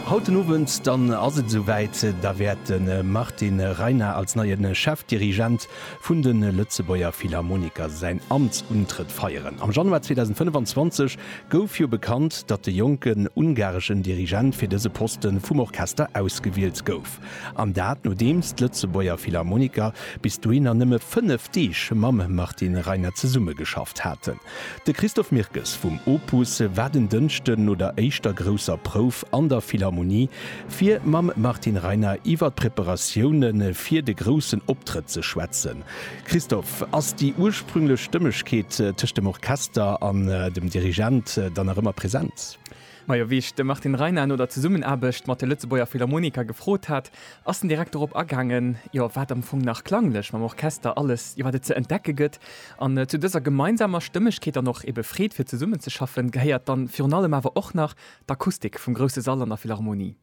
Haut den Owend dann ass et esou wäit, da wäert de Martin Reiner als neien Chefdirigent vun de Lëtzebuerger Philharmoniker säin Amtsuntrëtt feieren. Am Januar 2025 gouf jo bekannt, datt de jonken ungareschen Dirigent fir dëse Posten vum Orchester ausgewielt gouf. An dat nodeems d'Lëtzebuerger Philharmoniker bis dohinner nëmme 5 Deeg mam Martin Reiner zesummegeschafft haten. De Christophe Mirkes vum Opus war den Dënschden no der éischter grousser Prouf an der Philharmonie, fir mam Martin Reiner iwwer d'Preparatioune fir de groussen Optrëtt ze schwätzen. Christophe, ass déi ursprünglech Stëmmegkeet tëscht dem Orchester an dem Dirigent dann nach ëmmer present? Majo wéi ech de Martin Reiner no der Zesummenaarbecht mat de Lëtzebuerger Philharmoniker gefrot hat, ass den Direkt dorop agaangen, jo wat am Fong nach klanglech mam Orchester alles jo wat et ze entdecke gëtt. An zu dëser gemeinsamer Stëmmegkeet an och ebe Freed fir zesummenzeschaffen gehéiert dann virun allem awer och nach d'Akustik vum grousse Sall an der Philharmonie.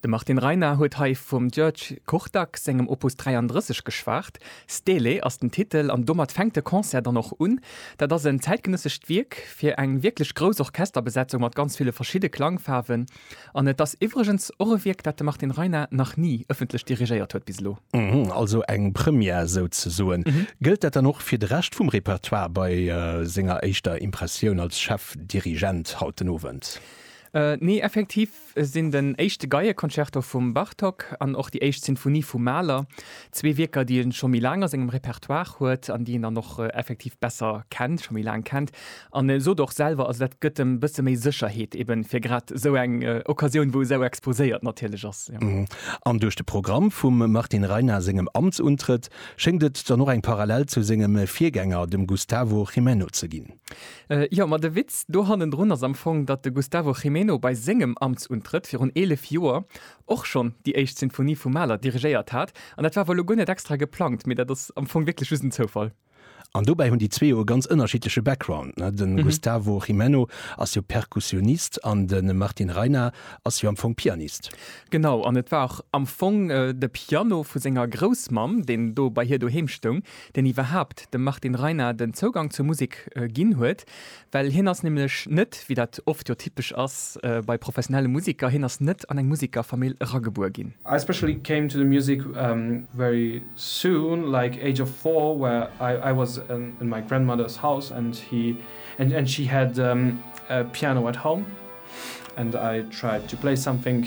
De Martin Reiner huet hei vum György Kortag sengem Opus 33 geschwat. Stele ass den Titel an domat fänkt de Concert dann och un. Dat ass en zäitgenëssescht Wierk fir eng wierklech grouss Orchesterbesetzung mat ganz ville verschidde Klangfaarwen. An et ass iwwregens och e Wierk, dat de Martin Reiner nach ni ëffentlech dirigéiert huet bis elo. Also eng Première souzesoen. Gëllt dat dann och fir de Rescht vum Repertoire bei senger éischter Impressioun als Chefdirigent haut den Owend? Nee, effektiv Et sinn den éischte Geieconcerto vum Bartók an och déi éischt Sinfonie vum Mahler, zwee Wierker, déi e scho méi laang a sengem Repertoire huet an déi een dann och effektiv besser kennt, scho méi laang kennt. An e sot och selwer, also dat gëtt em e bësse méi Sécherheet eben fir grad esou eng Occasioun, wou e sou exposéiert natierlech ass. An duerch de Programm vum Martin Reina sengem Amtsuntrëtt schéngt et dann och eng Parallel zu sengem Virgänger, dem Gustavo Gimeno, ze ginn. Jo, ma de Witz do hannendrun ass am Fong, datt de Gustavo Gimeno bei sengem Amtsuntrëtt virun 11 Joer och schonn déi éischt Sinfonie vum Mahler dirigéiert hat. An dat war wuel elo guer net extra geplangt, mee dat ass am Fong wierklech just en Zoufall. An dobäi hunn déi zwee jo e ganz ënnerschiddleche Background, ne? De Gustavo Gimeno ass jo Perkussionist an de Martin Reyna ass jo am Fong Pianist. Genau, an et war och am Fong de Piano vu senger Groussmamm, deen do bei hir doheem stoung, deen iwwerhaapt dem Martin Reiner den Zougang zur Musek ginn huet, well hien ass nämlech net, wéi dat oft jo typesch ass bei professionelle Musiker, hien ass net an eng Musikerfamill eragebuer ginn. I especially came to the music very soon, like age of four, where I was in my grandmother's house and she had a piano at home and I tried to play something.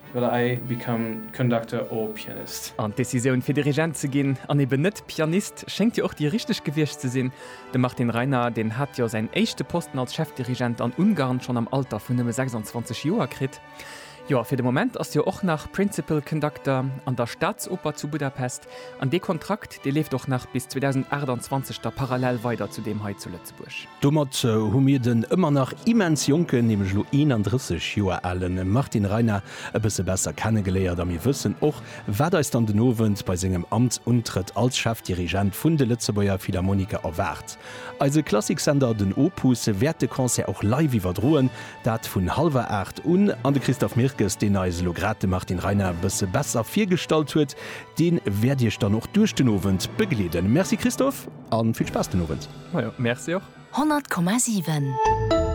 Well I become conductor or pianist. An d'Decisioun fir Dirigent ze ginn an eben net Pianist schéngt jo och déi richteg gewiescht ze sinn. De Martin Reiner, deen hat jo säin éischte Posten als Chefdirigent an Ungarn schonn am Alter vun nëmme 26 Joer kritt. Jo a fir de Moment ass jo och nach Principal Conductor an der Staatsoper zu Budapest an dee Kontrakt dee leeft och nach bis 2028 da parallel weider zu deem hei zu Lëtzebuerg. Lëtzebuerg. Domat hu mir den ëmmer nach immens jonken, nämlech elo 31 Joer ale Martin Reiner e bësse besser kenne geléiert a mir wëssen och, wat eis dann den Owend bei sengem Amtsuntrëtt als Chefdirigent vun de Lëtzebuerger Philharmoniker erwaart. Eise Klassiksender den Opus wäert de Concert och live iwwerdroen, dat vun hallwer 8 un, an de Christophe Mirkes, deen eis elo grad de Martin Reiner e bësse besser virgestallt huet, dee wäert iech dann och duerch den Owend begleeden. Merci Christophe. An vill Spaass den Owend. Majo, Merci och. 100,7.